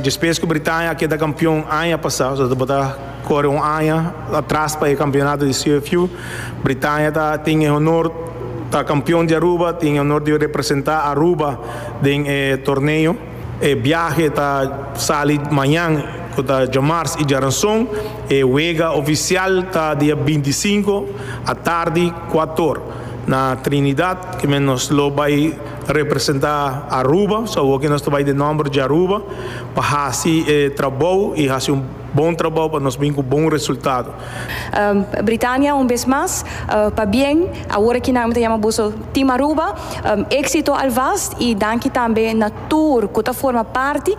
Despes ku Britania a keda kampion aña pasá, so ta bo ta kore un aña atras pa e kampionato di CFU. Britania ta tin e honor, ta kampion di Aruba, tin e honor di representá Aruba den e torneo. E biahe ta sali mañan, ku ta djamars i djaranson. E wega ofisial ta dia binti i sinku atardi kuator na Trinidad, ku men nos lo bai ta representa Aruba, so awoke nos ta bai den nomber dje Aruba pa hasi e trabou y hasi un bon trabou pa nos bin cu bon resultado. Britania un bes mas pa bien awor aki nan mi ta yama boso Team Aruba, exito alvast y danki tambe na tur cu ta forma parti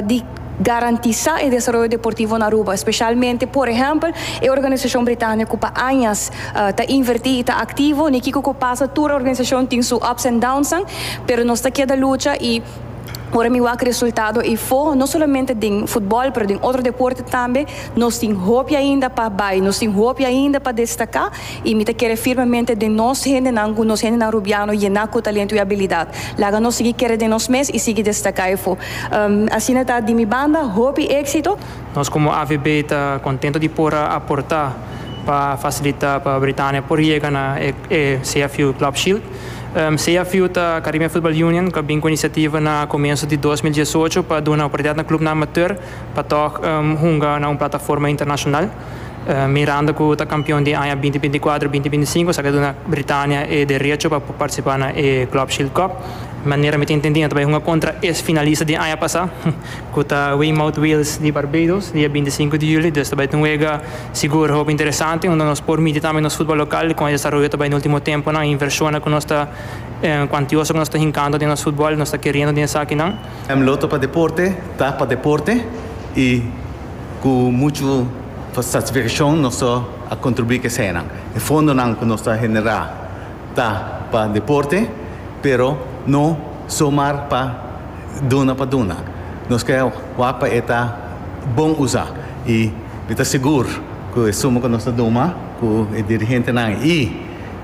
di. Garantisá e desaroyo deportivo na Aruba, spesialmente por ehèmpel e organisashon Britania ku pa añas ta invertí i ta aktivo, ni kiko ku pasa tur organisashon tin su ups and downsnan, pero nos ta keda lucha i ora mi wak resultado i foho no solamente den futbòl pero den otro deporte tambe nos tin hopi ainda pa bai, nos tin hopi ainda pa destaká. I mi ta kere firmemente den nos hendenan ku nos hendenan Rubiano yená ku talentu i abilidat. Laga nos sigui kere den nos mes i sigui destaká efo. Asina ta, di mi banda, hopi éksito. Nos komo avb ta kontentu di por a aportá pa fasilitá pa Britania por yega na e CFU Club Shield. CFU ta Caribbean Football Union ku a bin ku e inisiativa na komensu di dos mil diesocho pa duna oportunidat na klubnan amateur pa tòg hunga na un plataforma internashonal. Miranda cu ta campeon den aña binti binti cuatro, binti binti cinco sa ke duna Britania e derecho pa participa na e Club Shield Cup. Manera mi ta intendi nan ta bay hunga contra es finalista den aña pasa cu ta Weymouth Wales di Barbados dia binti sinku di juli. Dus ta bay ta un wega sigur hopi interesante unda nos por miti tambe nos futbal local di con e desaroyo ta bay na ultimo temponan, inversionnan cu nos ta cuantioso cu nos ta hincando den nos futbal, nos ta keriendo den esakinan. Mlotto pa deporte ta pa deporte y. Ku muchu satisfakshon nos so a kontribuí ku esenan. E fondonan ku nos ta generá ta pa deporte, pero no so mar pa duna pa duna. Nos ke wak pa e ta bon usá i mi ta sigur ku e suma ku nos ta duma ku e dirigentenan i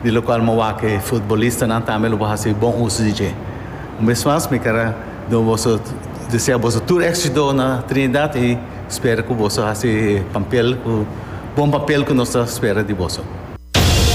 di lokual mi wak ku e futbolistanan tambe lo por hasi bon uso di dje. Un bes mas mi ker a. Nos boso desea boso tur éxito na Trinidad y spera cu boso haci papel cu bon papel cu nos ta spera di boso.